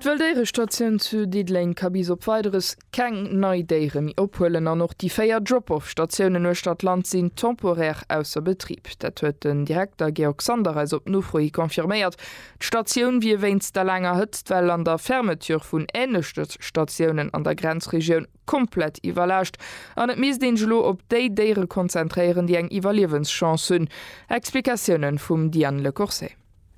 D'Wëlldéierestatioun zu Diddeleng ka bis op Weideres keng nei Déiere méi ophuelen an och déi véier Drop-off-Statiounen uechter d'Land sinn temporaire ausser Betrib. Dat huet den Direkter Georg Sander eis op Nofro hi confirméiert. D'Statioun wier wéinst der laanger Hëtztwell an der Fermeture vun änlechte Statiounen an der Grenzregioun komplett iwwerlaascht an et misst een sech elo op déi Déiere konzentréieren, déi eng Iwwerliewenschance hunn. Explikatiounen vum Diane Lecourcey.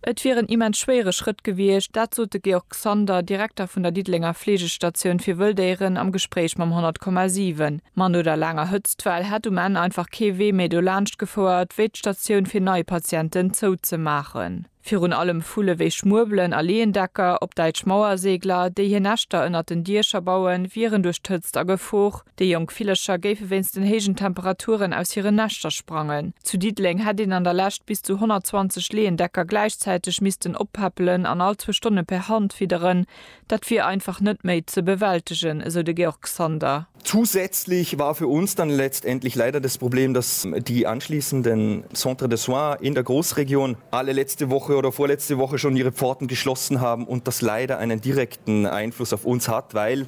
Et wier en immens schwéiere Schrëtt gewiescht, dat sot de Georg Sander, Direkter vun der Diddelenger Fleegestatioun fir Wëlldéieren am Gespréich mam 100,7. Ma no der laanger Hëtztwell hätt um Enn einfach kee Wee méi dolaanscht gefouert, wéi d'Statioun fir nei Patienten zouzemaachen. Virun allem Vulle wéi Schmuebelen a Leeëndecker, op Däitsch Mauersegler, déi hir Näschter ënnert den Diecher bauen, wieren duerch d'Hëtzt a Gefor. Déi jonk Villercher géife wéinst den héijen Temperaturen aus hiren Näschter sprangen. Zu Diddeleng hätt een an der Lescht bis zu 120 Leeëndecker gläichzäiteg missten oppäppelen an all zwou Stonne per Hand fidderen. Dat wier einfach net méi ze bewältegen, esou de Georg Sander. Zusätzlich war für uns dann letztendlich leider das Problem, dass die anschließenden Centres de soins in der Großregion alle letzte Woche oder vorletzte Woche schon ihre Pforten geschlossen haben und das leider einen direkten Einfluss auf uns hat, weil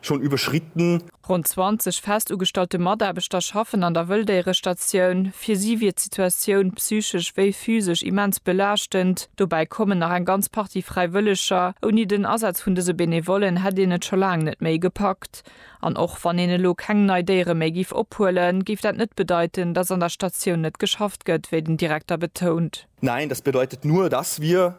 schon überschritten. Ronn 20 fest ugestallte Mataarbechter schaffen an der Wëlldéierestatioun. Fir si wier d'Situatioun, psychesch wéi physesch, immens belaaschtend. Dobäi kommen nach eng ganz Partie Fräiwëlleger. Ouni den Asaz vun dëse Benevollen hätt een et scho laang net méi gepackt. An och wann een elo keng nei Déiere méi giff ophuelen, géif dat net bedeiten, dass an der Statioun net geschafft gëtt, wéi den Direkter betount. Nein, das bedeutet nur, dass wir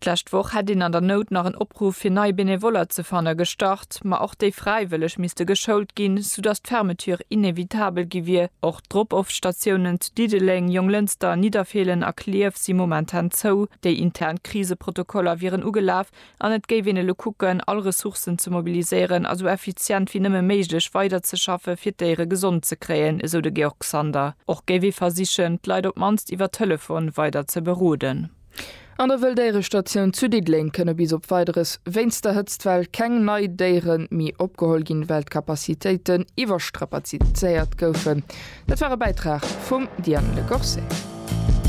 D'lescht Woch hätt een an der Nout nach en Opruff fir nei Benevoller ze fanne gestart, ma och déi Fräiwëlleg misste geschoult ginn, soudatt d'Fermeture inevitabel gi wier. Och d'Drop-off-Statiounen zu Diddeleng, Jonglënster, Nidderfeelen a Klierf si momentan zou. Déi intern Kriseprotokoller wieren ugelaf an et géif een elo kucken, all Ressourcen ze mobiliséieren a sou effizient wéi nëmme méiglech weiderzeschaffe fir d'Déiere gesond ze kréien, esou de Georg Sander. Och géif ee versichen, d'Leit op d'mannst iwwer Telefon weider ze beroden. An der Wëlldéierestatioun zu Diddeleng kënne bis op Weideres wéinst der Hëtztwell keng nei Déiere méi opgeholl ginn, well d'Capacitéiten iwwerstrapazizéiert goufen. Dat war e Bäitrag vum Diane Le Corset.